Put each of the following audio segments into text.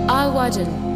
Adhmhaidin.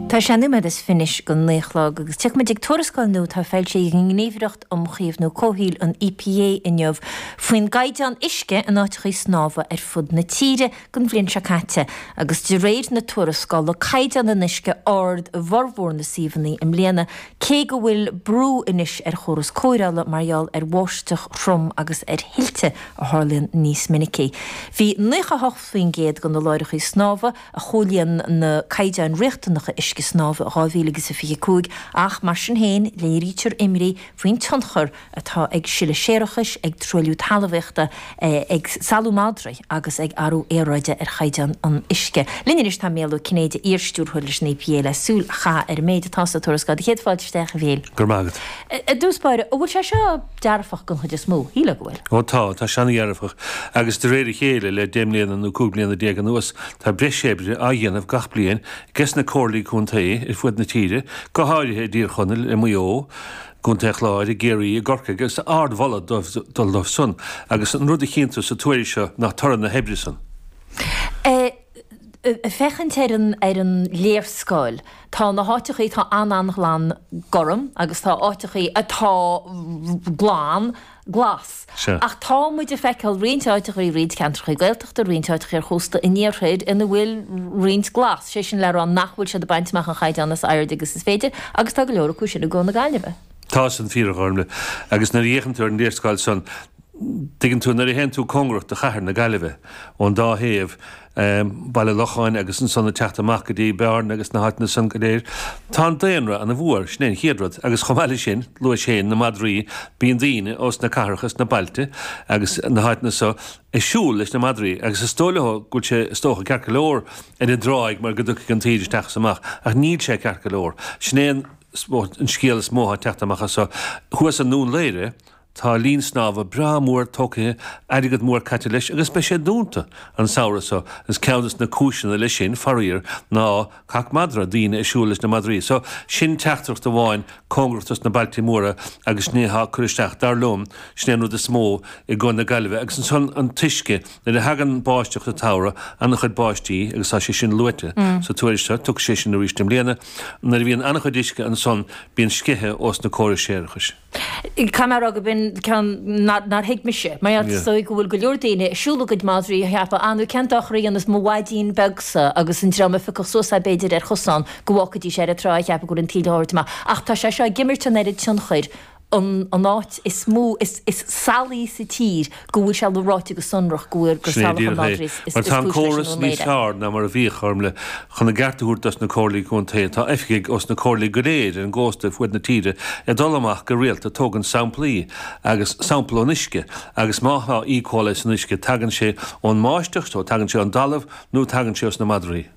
Tá sé nóiméad is fiche anois go naoi a chlog agus tiocfaidh muid ag tuarascáil nua atá foilsithe ag an nGníomhaireacht um Chaomhnú Comhshaoil, an EPA, inniu faoin gcaighdeán uisce in áiteachaí snámha ar fud na tíre don bhliain seo caite agus de réir na tuarascála caighdeán an uisce ard i bhformhór na suíomhanna i mbliana Cé go bhfuil brú anois ar chóras cóireála mar gheall ar bháisteach throm agus ar thuilte a tharlaíonn níos minicí, bhí 98% de na láithreacha snámha a chomhlíon na caighdeáin riachtanacha uisce snámha 2025 ach, mar sin féin, léirítear imní faoin tionchar atá ag sileadh séarachais, ag truailliú talmhaíochta, ag salú madraí agus ag athrú aeráide ar chaighdeán an uisce. Linn anois tá Micheál Ó Cinnéide, iar-stiúrthóir leis an EPA, le súil a chaitheamh ar an méid atá sa tuarascáil. Do chéad fáilte isteach, a Mhichíl. Go raibh maith agat. I dtús báire, an bhfuil sé seo dearfach den chuid is mó? Shílfeá go bhfuil. Ó tá, tá sé ana-dhearfach. Agus de réir a chéile, le deich mbliana nó cúig bliana déag anuas, tá breis oibre á dhéanamh gach bliain ges na Comhairlí Contae ar fud na tíre, go háirithe i dTír Chonaill, i Maigh Eo, gContae an Chláir, i gCiarraí, i gCorcaigh agus ardmholadh ag dul dóibh san agus an rud a chíonn tú sa tuairisc seo ná toradh na hoibre san. Ag féachaint ar an ar an léarscáil tá na háiteachaí atá an-an-ghlan gorm agus tá áiteachaí atá glan Glas. Sea. Ach tá muid ag feiceáil roinnt áiteachaí, roinnt ceantrachaí Gaeltachta, roinnt áiteachaí ar chósta an iarthair ina bhfuil roinnt Glas, sé sin le rá nach bhfuil siad ag baint amach an chaighdeán is airde agus is féidir agus tá go leor acu sin i gCo. na Gaillimhe. Tá san fíor, a Ghormfhlaith. Agus nuair a fhéachann tú ar an léarscáil san, tuigeann tú, nuair a théann tú cóngarach do chathair na Gaillimhe, ón dá thaobh, i mBaile Locháin agus ansan ag teacht amach go dtí Bearna agus na háiteanna san go léir. Tá an daonra ana mhór, sin é an chéad rud, agus chomh maith le sin, luaigh sé na madraí, bíonn daoine ós na cathracha is na bailte agus na háiteanna so ag siúl leis na madraí agus is dóigh leo go bhfuil sé is dócha ceart go leor ar an dtráigh mar go dtiocfaidh an taoide isteach is amach ach níl sé ceart go leor. Sin é an scéal is mó atá ag teacht amach as so. Thuas i nDún Laoghaire, Tá linn snámha breá mór tógtha, airgead mór caite leis agus beidh sé dúnta an samhradh so. Is ceann de na cúiseanna leis sin, faraor, ná cac madra, daoine ag siúl leis na madraí so. Sin teachtaireacht amháin cóngarach dos na bailtí móra agus sin é atá ag cur isteach. Dar liom, sin é an rud is mó i gCo. na Gaillimhe. Agus ansan an t-uisce, nuair a thagann báisteach sa tsamhradh, an-chuid báistí agus tá sé sin luaite sa tuairisc seo, tiocfaidh sé sin aríst i mbliana, nuair a bhíonn an-chuid uisce ansan, bíonn sceitheadh ós na córais séarachais. Caithfidh mé a rá gurb in ceann nár thuig mise, mar Yeah. is dóigh go bhfuil go leor daoine ag siúl a gcuid madraí ag ceapadh, ah nó cén dochar a dhéanfas mo mhaidrín beagsa agus an dream a phiocfadh suas é b'fhéidir ar chosán go bhfágfaidís ar an trá ag ceapadh go bhfuil an taoille á thabhairt amach. Ach tá sé seo ag imirt an oiread tionchair an an áit is mó is is salaí sa tír go bhfuil sé ráite go sonrach go bhfuil gur salachar madra is cúis leis an drochuisce. Sin é díreach é. Mar tá an córas níos fearr ná mar a bhíodh, Gormfhlaith, chun a gceart a thabhairt dos na Comhairlí Contae. Tá oifigigh ós na Comhairlí go léir ar an gcósta ar fuaid na tíre ag dul amach go rialta ag tógaint samplaí agus sampal ón uisce agus má thá E. Coli san uisce tagann sé ón mbáisteach nó tagann sé ón dtalamh nó tagann sé ós na madraí.